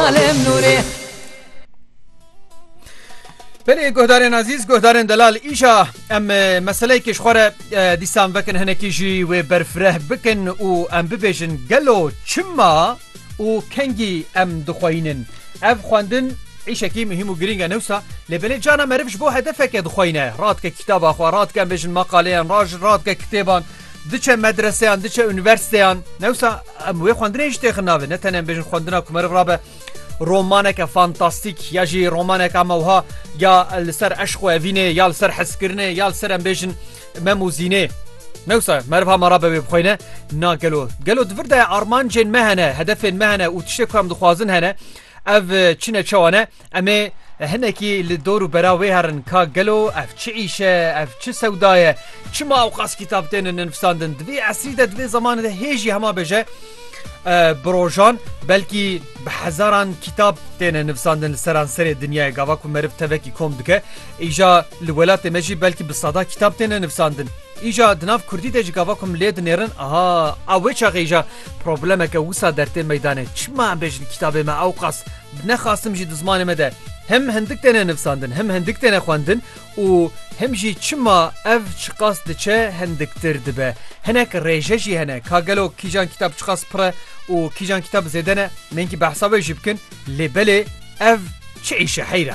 Alem Nurê. Belê guhdarên azîz guhdarên delal îşa em meseleyekê ji xwe re dîsan vekin hinekî jî wê berfireh bikin û em bibêjin gelo çima û kengî em dixweyînin. Ev xwendin îşekî muhîm û girîng e newsa lê belê cana meriv ji bo hedefeke dixweyîne radike kîtaba xwe radike em bêjin maqaleyan raj radike kitêban diçe medreseyan diçe unîversîteyan newsa Em wê xwendinê jî têxin navê ne tenê em bêjin xwendina ku meriv rabe romaneke fantastîk ya jî romaneka me wiha ya li ser eşqo evînê ya li ser hezkirinê ya li ser em bêjin mem û zînê. Newsa meriva me rabe wê bixweyne na gelo gelo di vir de armancên me hene hedefên me hene û tiştê ku em dixwazin hene ev çine çewa ne Em ê hinekî li dor û bera wê herin ka gelo ev çi îş e, ev çi sewda ye, çima ewqas kitap tên nivîsandin. Di vê esrî de di vê zemanê de hê jî hema bêje bi rojan belkî bi hezaran kitap tên nivîsandin li seranserê dinyayê gava ku meriv tevekî kom dike. Îja li welatê me jî belkî bi sada kitap tên nivîsandin. Îja di nav Kurdî de jî gava ku milê dinêrin aha a wê çaxê îja problemeke wisa dertê meydanê. Çima em bêjin kitabê me ewqas Bi ne xastim jî di zimanê me de him hindik têne nivsandin, him hindik têne xwendin û him jî çima ev çiqas diçe hindiktir dibe. Hinek rêje jî hene ka gelo kîjan kîtab çiqas pir e û kîjan kîtab zêde ne, nênkî behsa wê jî bikin lê belê ev çi îş e heyr e.